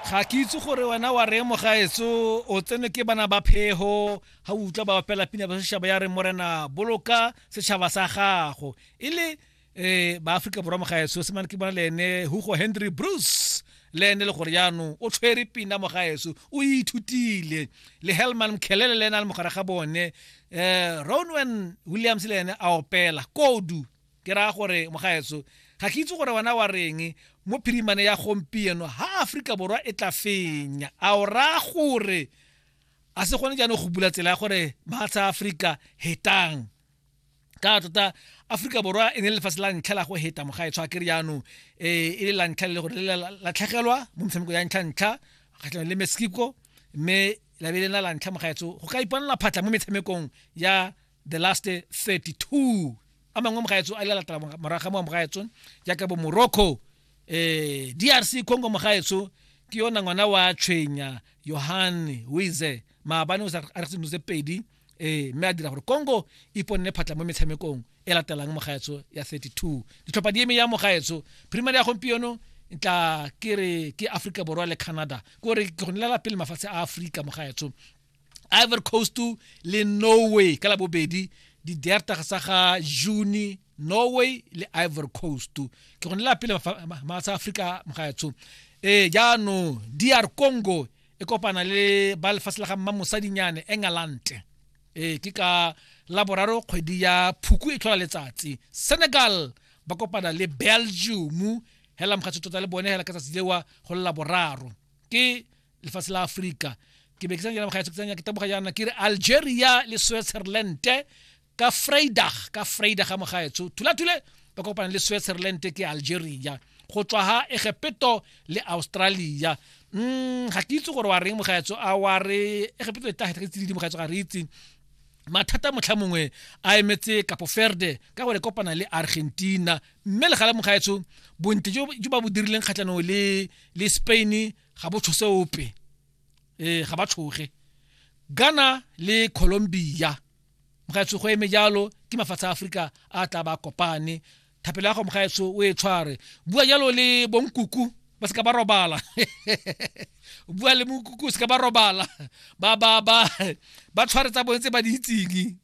ga ke itse gore wena wa re mo gaetso o tsene ke bana ba phego ga o utlwa ba bapela pina ba setšhaba ya re morena boloka setšhaba sa gago e le um ba aforika borwa mo gaetso se mane ke bona le ene hugo henry bruce le ene le gore jaanong o tshwere pina mo gaetso o ithutile le helman mkhelele le ene a le mogare ga bone um ronwen williams le ene a opela kodu ke raya gore mogaetso ga ke itse gore wena wa reng mo phirimane ya gompieno ha aforika borwa e tla fenya a o raya gore a se gone jaanong go bula tsela ya gore matsha aforika hetang ka tota aforika borwa e ne le lefatshe la ntlha la go heta mogaetsho a kere jaanong eh, e le la ntlha le gore le latlhegelwa mo metshameko ya ntlha ntlha kgatlhanong le mexico mme labe lena la ntlha mogaetso go ka iponela phatlha mo metshamekong ya the last 32 a mangwe mogaetso a lelatela moraga mo mogaetso jaaka bo morocco eh drc congo mogaetso ke yona ngwana wa tshwenya yohane wize maabane o sa a re tseno tse pedi eh mme a dira gore congo e iponne phatla mo metshamekong e latelang mogaetso ya 32 ditlhopha di eme ya mogaetso primary ya gompieno tla ke re ke africa borwa le canada ko re ke go nelela pele mafatshe a africa mogaetso ivory coast le norway ka labobedi di-deartag sa ga june norway le ivory coast ke gone la pele matsha afrika mogaetsho ee eh, jaanong dr congo e kopana le ba lefatshe la ga mma mosadinyane england ee eh, ke ka laboraro kgwedi ya phuku e tlhola letsatsi senegal ba kopana le belgium hela mogatso tota le bone hela ka tsatsi lewa go lela boraro ke lefatshe la afrika ke be ke sanya bagaetso ke sanya ke taboga yana ke re algeria le switzerland ka freidag ka freidag ga mogaetso thulathule ba kopana le switzerland ke algeria go tswa ha egepeto le australia mm ga ke itse gore wa reng mogaetso a wa re egepeto e tlagetsa ke tsididi mogaetso ga re itse mathata motlha mongwe a emetse kapo ferde ka gore kopana le argentina mme le galemong ga etso bontle jo ba bo dirileng kgatlhanong le le spain ga bo tshose ope ee ga ba tshoge ghana le colombia mogaetso go eme jalo ke mafatshe a aforika a tla ba kopane thapelo ya go mogaetso o e tshware bua jalo le bonkuku ba seka ba robala bua le mokuku seka ba robala ba ba ba ba tshware tsa bone tse ba di itseng